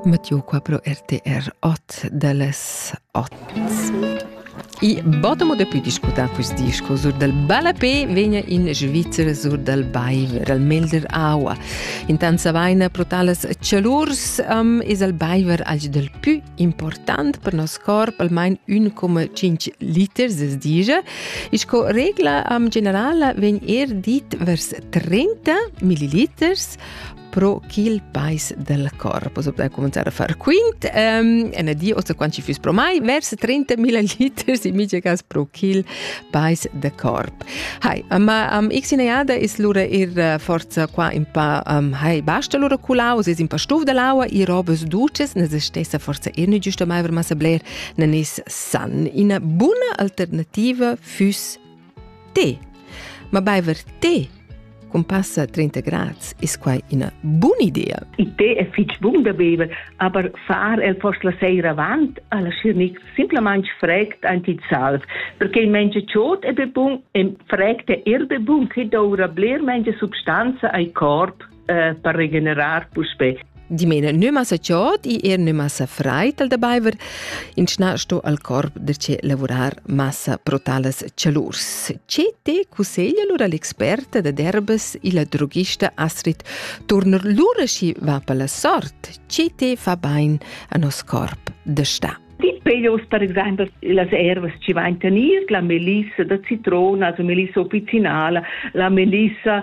Mattiu qua pro RTR 8 delles 8. I bottomo de più discutar quest disco sur dal Balapé vegna in Svizzer sur dal Baiver, al Melder Aua. Intanza vaina pro talas cialurs um, es al Baiver alch del più important per nos corp, almain 1,5 liters, es digia. E sco regla um, generala vegn er dit vers 30 milliliters pro ch'il pais del corpus ob da cominciare a far quint um, en die osta quant ci fis pro mai vers 30.000 liters in mice cas pro ch'il pais de corp hai ma um, x in eada is lura ir uh, forza qua in pa um, hai basta lura culaus is in pa stuf de laua i robes duces ne se stessa forza ir ne giusto mai ver massa bler ne nis san ina buna alternativa füs Te. Ma baiver te con passa 30 grads ist quai una buona idea. Il tè è fitg bun da bever, aber far el post la sera avant alla schirnic simplemente fregt anti il salv, perché il menge ciot è be bun e fregt è er be bun che doura bler menge substanza ai corp eh, per regenerar puspè. Dimena nüma sa chod i er nüma sa freit al da baiver, in schna sto al corp de ce lavurar massa pro tales celurs. Ce te cusseglia lura l'experta da derbes illa drogista Astrid Turner lura schi va per la sort, ce te fa bain a nos corp de sta. Die Pelos, per esempio, las ervas ci va in tenir, la melissa da citrona, la melissa opizzinala, la melissa